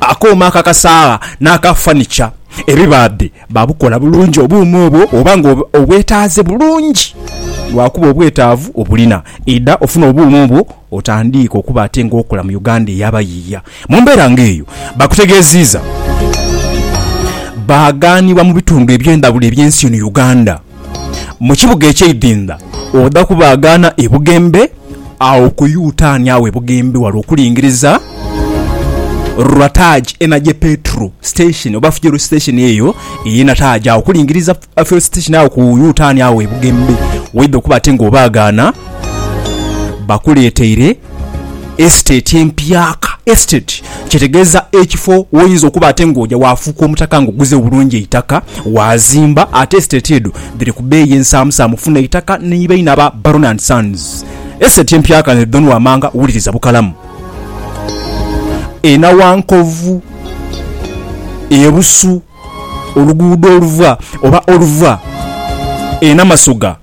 Akooma aka kasaagha n'aka fanica ebibaadhe baabukola bulungi obuuma obwo oba nga obwetaaze bulungi lwakuba obwetaavu obulina. Idha ofune obuuma obwo otandiike okuba ate ng'okola mu Uganda ey'abayiiya. Mu mbeera ng'eyo, baakutegeeziiza baaghanibwa mu bitundu eby'endhawulo eby'ensi eno Uganda. mu kibuga eky'eidinda, oda kubaagaana e bugembe agho ku Yutaani agho e bugembe ghale okulingiriza Rwataji ena gye Petro Station oba Fuel Station eyo ey'e Nataji agho okulingiriza Fuel Station agho ku Yutaani agho e bugembe. Waidha okuba ate nga obaagaana, bakuleeteire. Estate empyaka, Estate kyetegeeza ekifo woyinza okuba ate nga oja wafuuka omutaka nga oguze bulungi eitaka wazimba ate estate edho dhiri ku beeyi ensaamusaamu funa eitaka ni baine aba Baron and Sons Estate empyaka nze Don Wamanga wuliriza bukalamu e Nawankovu e Busu oluguudo oluva oba oluva e Namasoga.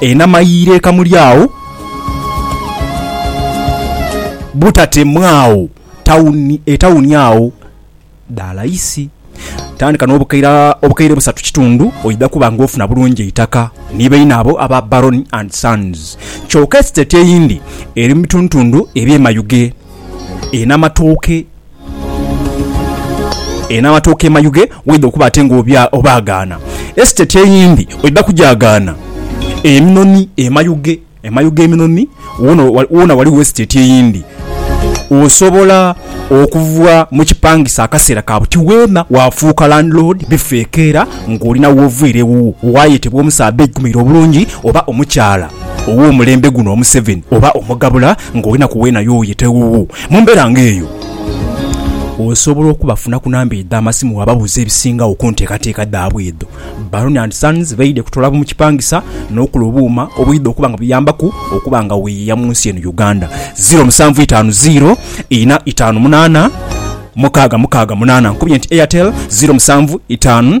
Enhama y'eireeka muli agho butate mwao tawuni etawuni agho dha laisi. Tandika n'obukaira obukaire busatu kitundu oidha kuba nga ofuna bulungi eitaka ni baine abo aba Baroni and Sons. Kyoka esiteti eyindi eri mu bitundutundu eby'emayughe. Enhama tooke. Eno amatooke emayughe waidha okuba ate nga obaagaana. Esiteti eyindi oidha kugyagaana. Eminoni emayughe, emayughe eminoni woona ghaligho esiteti eyindi. Osobola okuva mu kipangisa akaseera ka buti weena waafuuka landiloodi bifa ekeera ng'olina w'oviira ewuwo, waayetebwa omusaadha aigumire obulungi oba omukyala ow'omulembe guno omuseveni oba omugabula ng'olina ku weena y'oyeta ewuwo. Mu mbeera ng'eyo, osobola okubafuna ku namba edho amasimu bw'obabuuza ebisingagho ku nteekateeka dhaabwe edho. Baroni and Sons baidhie kutoola bumukipangisa n'okola obuuma obwidha okuba nga buyambaku okuba nga weeyiiya mu nsi eno Uganda. Ziro musanvu itaanu ziro ina itaanu munaana mukaaga mukaaga munaana. Nkubye nti Airtel ziro musanvu itaanu.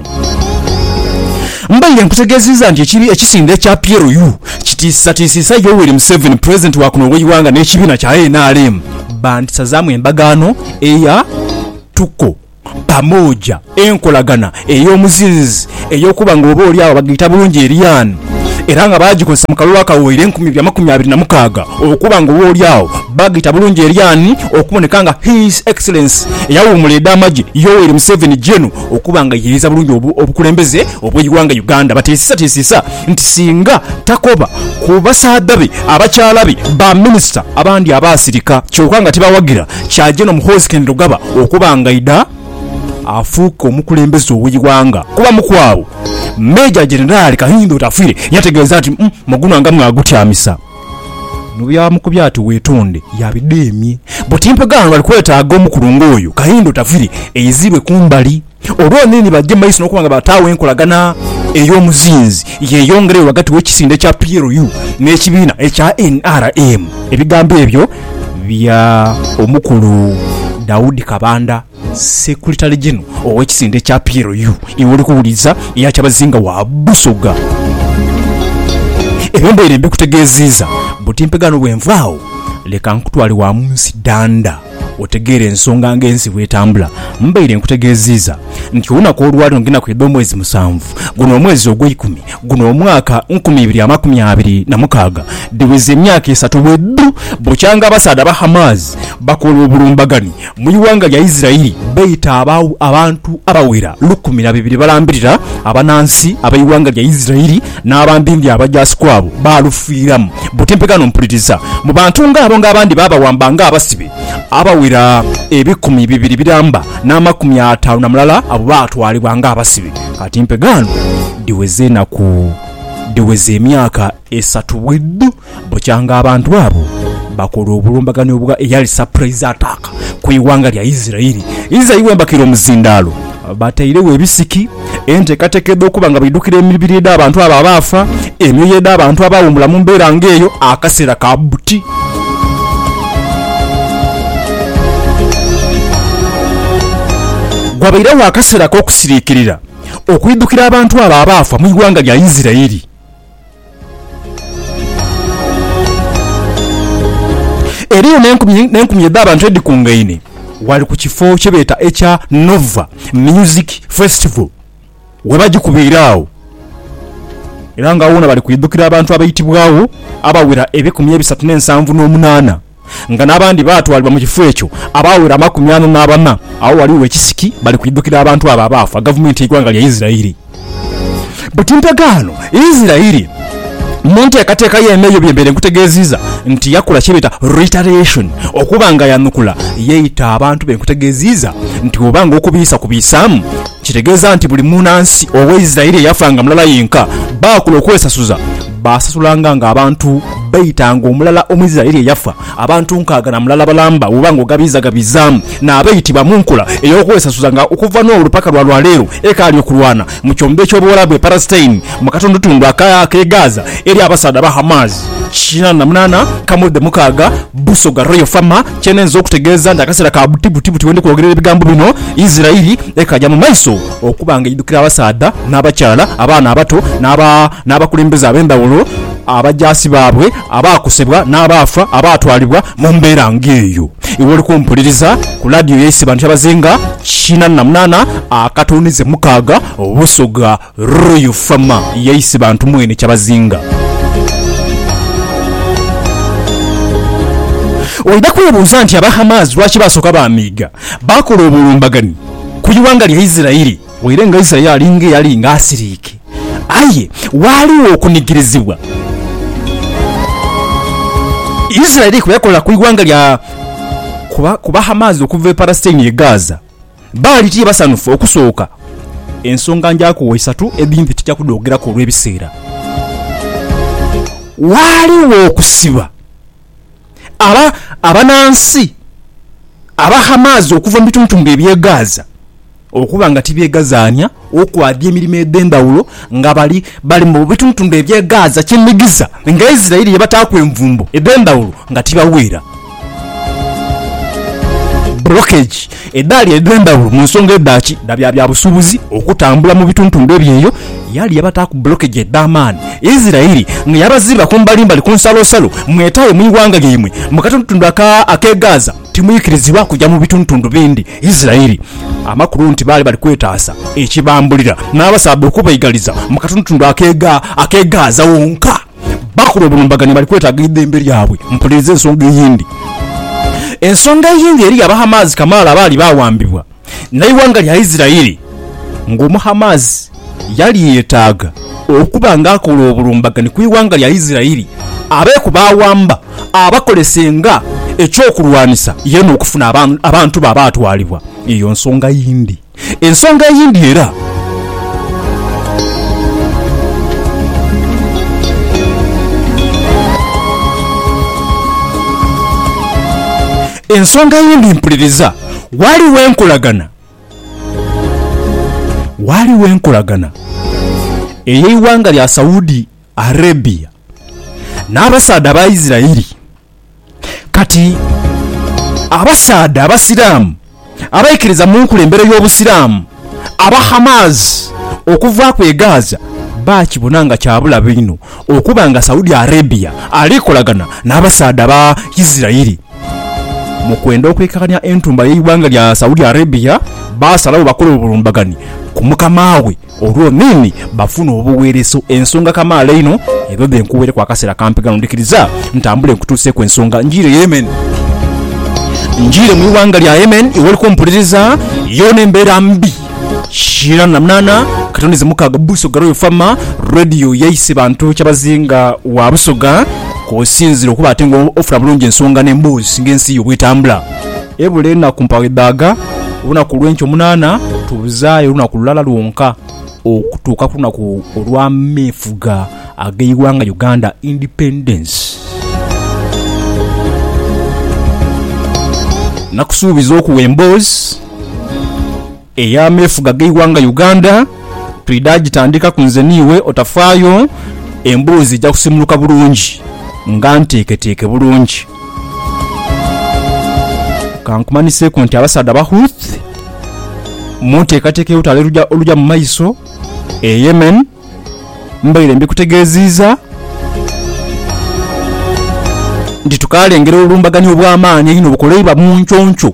Mbaire nkutegeziiza nti ekibi ekisinde ekya PLU kitiisatiisiisa Yoweri Museveni Pulezidenti wa kuno ow'eighanga n'ekibiina kya nrm bandisazaamu endagaano eya Tuko Pamoja, enkolagana ey'omuzinzi ey'okuba nga oba oli agho bagiyita bulungi eriyani era nga baagikozesa mu kalulu akawoire enkumi ibiri amakumi abiri na mukaaga okuba nga oba oli agho bagiyita bulungi eriyani okuboneka nga His Excellency eyawuumula ed'amagye Yoweri Museveni Gen. okuba nga yeeyiriza bulungi obukulembeze obw'eighanga Uganda bateesisateesisa nti singa takoba ku basaadha be abakyala be ba minisita abandi abaasirika kyoka nga tibawagira kya Gen Muhoozi Kainerugaba okuba ng'aidha afuuke omukulembeze ow'eighanga kuba mukwabo Meeja Jenerali Kahinda Otafiire yategeeza nti muguno nga mw'agutyamisa. Nobweyamukubya ati wetunde yabidemye buti mpegha wano bali kwetaaga omukulungo oyo Kahinda Otavire eizibwe kumbali olwo nini baje maiso nokuba nga bataagho enkolagana eyomuzinzi yeyongereyo ghagati wekisinde kya PLU nekibiina ekya nrm. Ebigambo ebyo bya omukulu Daudi Kabanda. Sekulitale Jeno ow'ekisinde ekya PLU y'oli kuwuliriza eya Kyabazinga wa Busoga ebembaire mbikutegeeziiza butimpe ghano bwenvaagho leka nkutwale wa munsi danda otegeere ensonga ng'ensi bwetambula. Mbaire nkutegeeziiza nti olunaku olwaleero ngenda kwidha omwezi musanvu guno omwezi ogweikumi guno omwaka nkumi ibiri amakumi abiri na mukaaga dhiweze emyaka esatu bwedhu bukyanga abasaadha aba Hamas bakola obulumbagani Mu ighanga lya Isiraeli baita abaagho abantu abawera lukumi na bibiri balambirira abanansi ab'eighanga lya Isiraeli, n'abandindi abajaasi kwabo baalufiiramu. Butimpe ghano mpuliriza. Mu bantu ng'abo ng'abandi baabawamba ng'abasibe, abawera ebikumi bibiri biramba, n'amakumi ataanu na mulala abo baatwalibwa ng'abasibe. Katimpe ghano, dhiweze enaku, dhiweze emyaka. Esatu bwedho bukya nga abantu abo bakola obulumbaganhi obwa eyali surprise attack ku ighanga lya Isiraeli. Israel bwebakira omuzindaalo, batairegho ebisiki, enteekateeka edh'okuba nga baidhukira emibiri edh'abantu abo abaafa, emyoyo edh'abantu abaawumula mu mbeera nga eyo akaseera ka buti. Ghabairegho akaseera ak'okusiriikirira okwidhukira abantu abo abaafa mu ighanga lya Isiraeli. Eriyo n'enkumi n'enkumi edh'abantu edhikungaine ghale ku kifo kye beeta ekya Nova Music Festival we bagikubaire agho era nga ghona bali kwidhukira abantu abaitibwagho abaghera ebikumi ebisatu n'ensanvu n'omunaana. nga n'abandi baatwalibwa mu kifo ekyo abaawera amakumi ana n'abana. Agho ghaligho ekisiki bali kuidhukira abantu abo abaafa, gavumenti y'eighanga lya Isiraeli. Buti ndagaano ya Isiraeli mu nteekateeka ye n'eyo bye mbaire nkutegeeziiza nti yakola kye beeta reiteration, okuba nga yanukula, yaita abantu be nkutegeeziiza nti oba nga okubiisa kubiisaamu, kitegeeza nti buli muunansi ow'Isiraeli eyafa nga mulala yenka, baakula okwesasuza. baasasulanga ng'abantu baita ng'omulala Omuisiraeli eyafa, abantu nkaaga na mulala balamba bw'oba ng'ogabiizagabiizaamu n'abaitibwa mu nkola ey'okwesasuza nga okuva n'olwo paka lwa lwaleero ekaali okulwana mu kyombo eky'Obuwarabu e Palestine mu katundutundu ak'e Gaza eri abasaadha ba Hamas. Kinaana na munaana, Kamudhe mukaaga, Busoga Royal Farmer, Kyenenza okutegeeza nti akaseera ka buti buti buti wendi kwogerera ebigambo bino, Isiraeli ekaaja mu maiso. Okuba nga eidhukira abasaadha n'abakyala, abaana abato n'abakulembeze ab'endhawulo, abajaasi baabwe abaakosebwa n'abaafa abaatwalibwa mu mbeera ng'eyo. Iwe oli kumpuliriza ku laadiyo yaise bantu kyabazinga kinana na munaana akatondeze mukaaga Busoga Royal Fama yaise bantu mwene kyabazinga. Oidha kwebuuza nti aba Hamas lwaki baasooka baamiiga? Baakola obulumbaganhi ku ighanga lya Isiraeli. Waire nga Isaya ali ng'eyali ng'asiriike, aye waaligho okunigirizibwa Isiraeli kwe yakola ku ighanga lya ku Bahamaazi okuva e Palasitaini ye Gaaza. Baali tibasanhufu okusooka. Ensonga njaaku wo isatu edhimpi tija kudhoogeraku olw'ebiseera. Waaligho okusiba. aba abanansi aba Hamas okuva mu bituntunga eby'e Gaza okuba nga tibyegazaania okwaadia emirimo edh'endhawulo nga bali bali mu bituntunga eby'e Gaza kye nhigisa nga Israel ye bataaku envumbo edh'endhawulo nga tibaweera blockage. Edhaali edhendhawulo mu nsonga edha ki dha bya byabusubuzi okutambula mu bituntundu ebyeyo, yaali yabataaku blokeji edhamaani Isiraeli nga yabaziba kumbalimbali ku nsalosalo, mwetaaye mu ighanga lyaimwe mu katundutundu aka ak'e Gaza, timuikirizibwa kuja mu bituntundu bindi Isiraeli. Amakulu nti baali bali kwetaasa ekibambulira n'abasaadha okubaigaliza mu katundutundu ak'e ak'e Gaza wonka. Bakulu obulumbaganio bali kwetaaga eidhembe lyabwe. Mpuliriza ensonga eyindi. Ensonga eyindi eriyo Abahamaasi kamaala abaali baawambibwa n'eighanga lya Isiraeli. Ng'Omuhamaasi, yali yeetaaga okuba ng'akola obulumbaganio ku ighanga lya Isiraeli, abe ku baawamba abakolese nga eky'okulwanisa ye n'okufuna abantu be abaatwalibwa. Eyo nsonga yindi. Ensonga eyindi era. Ensonga eyindi mpuliriza, ghaligho enkolagana, ghaligho enkolagana ey'eighanga lya Saudi Arabia n'abasaadha Abaisiraeli. Kati abasaadha Abasiraamu abaikiriza mu nkulembere y'Obusiraamu aba Hamas okuvaaku e Gaza baakibona nga kya bulabe inho okuba nga Saudi Arabia ali kolagana n'abasaadha ba Isirairi mu kwenda okwekakanya entumba y'eighanga lya Saudi Arabia, baasalagho bakole obulumbaganhi ku mukama we. Olwo nini bafuna obuweereso ensonga kamaala einho edho dhe nkuweereku akaseera kampi ghano. Ndhikiriza ntambule nkutuuseeku ensonga. Njiire Yemen. Njiire mu ighanga lya Yemen iwoli kumpuliriza yoona embeera mbi. Shiran Lamnana, Katonizi Mukaaga Busoga Royal Farmer Radio yaise bantu kyabazinga wa Busoga kwosinzira okuba ate nga ofuna bulungi ensonga n'emboozi ng'ensi yo bw'etambula. Ebula enaku mpaagho edhaaga, olunaku olw'enkya omunaana tubuzaayo olunaku lulala lwonka okutuuka ku lunaku olw'ameefuga ag'eighanga Uganda, Independence. Nakusuubiza okuwa emboozi. Ey'ameefuga g'eighanga Uganda twidha gitandikaku nze n'iwe otafaayo, emboozi eja kusiimuluka bulungi nga nteeketeeke bulungi. Ka nkumanhiseeku nti abasaadha Abahouthi mu nteekateeka y'olutalo oluja mu maiso e Yemen mbaire mbikutegeeziiza nti tukaalengera obulumbaganhi obw'amaani einho obukoleibwa mu nconco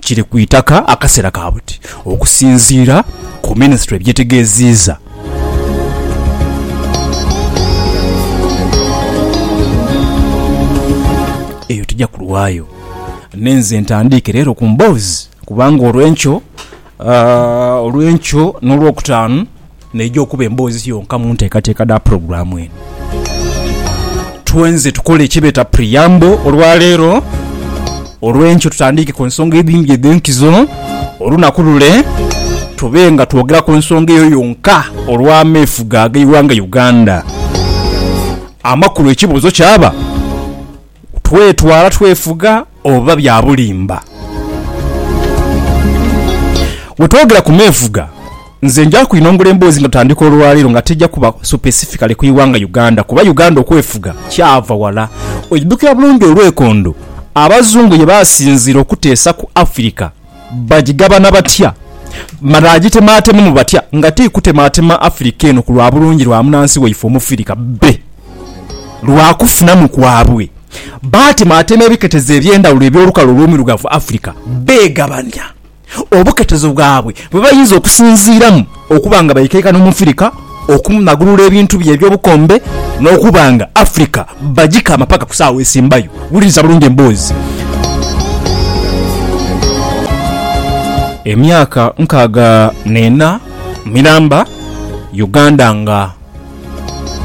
kiri ku itaka akaseera ka buti, okusinziira ku minisitule byetegeziiza. Eyo tija kulwayo. Nenze ntandiike leero ku mboozi kubanga olwenkyo. Olw'enkyo n'Olwokutaanu n'eija okuba emboozi yonka mu nteekateeka dha pulogulaamu eno. Twenze tukole eki beeta preamble olwaleero. Olw'enkyo tutandiike ku nsonga edhindhi edh'enkizo olunaku lule, tube nga twogera ku nsonga eyo yonka olw'ameefuga ag'eighanga Uganda. Amakulu ekibuuzo kyaba. Twetwala twefuga oba bya bulimba? We twogera ku meefuga, nze nja kwinongula emboozi nga tutandika olwaleero nga tija kuba supesifikaly ku ighanga Uganda kuba Uganda okwefuga kyava wala. Oidhukira bulungi olwekondo Abazungu ye baasinziira okuteesa ku Afirika. bagigabana batya? Banaagitematemamu batya nga ti kutematema Afirika eno ku lwa bulungi lwa munansi waife Omufirika be lwa kufunamu kwabwe? Batematema ebiketezo eby'endhawulo eby'olukale olw'omuirugavu Afirika, beegabania obuketezo bwabwe bwe bayinza okusinziiramu. okuba nga baikaika n'Omufirika okumulagulula ebintu bye eby'obukombe n'okuba nga Afirika bagika amapaka ku saawa esembayo. Wuliriza bulungi emboozi. Emyaka nkaaga n'ena miramba Uganda nga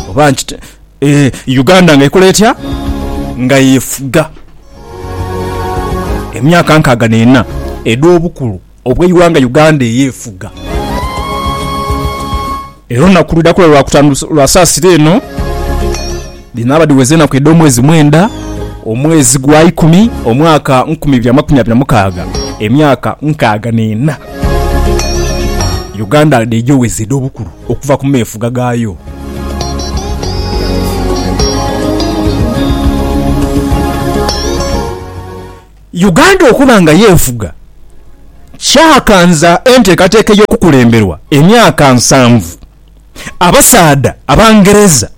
oba nkite eeh, Uganda nga ekola etya? Nga yefuga. Emyaka nkaaga n'ena edh'obukulu. obw'eighanga Uganda eyefuga. Era olunaku lwidhaku lwa Lwakutaanu lwa saasira eno, dhinaaba dhiweza enaku edh'omwezi mwenda, omwezi gwa ikumi, omwaka nkumi ibiri amakumi abiri na mukaaga, emyaka nkaaga n'ena Uganda dh'eija oweza edh'obukulu okuva ku meefuga gaayo. Uganda okuba nga yeefuga kyakanza enteekateeka ey'okukulemberwa emyaka nsanvu abasaadha Abangereza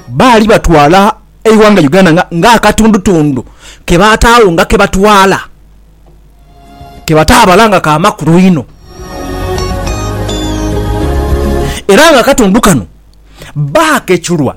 baali batwala eighanga Uganda nga ng'akatundutundu ke baataagho nga ke batwala ke bataabala nga ka makulu inho. Era nga akatundu kano baakechulwa.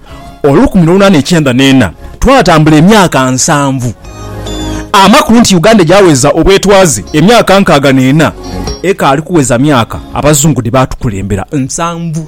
olukumi n'olunana ekyenda n'ena, twatambula emyaka nsanvu. Amakulu nti Uganda egyaweza obwetwaze emyaka nkaaga n'ena, ekaali kuweza myaka Abazungu dhe baatukulembera nsanvu.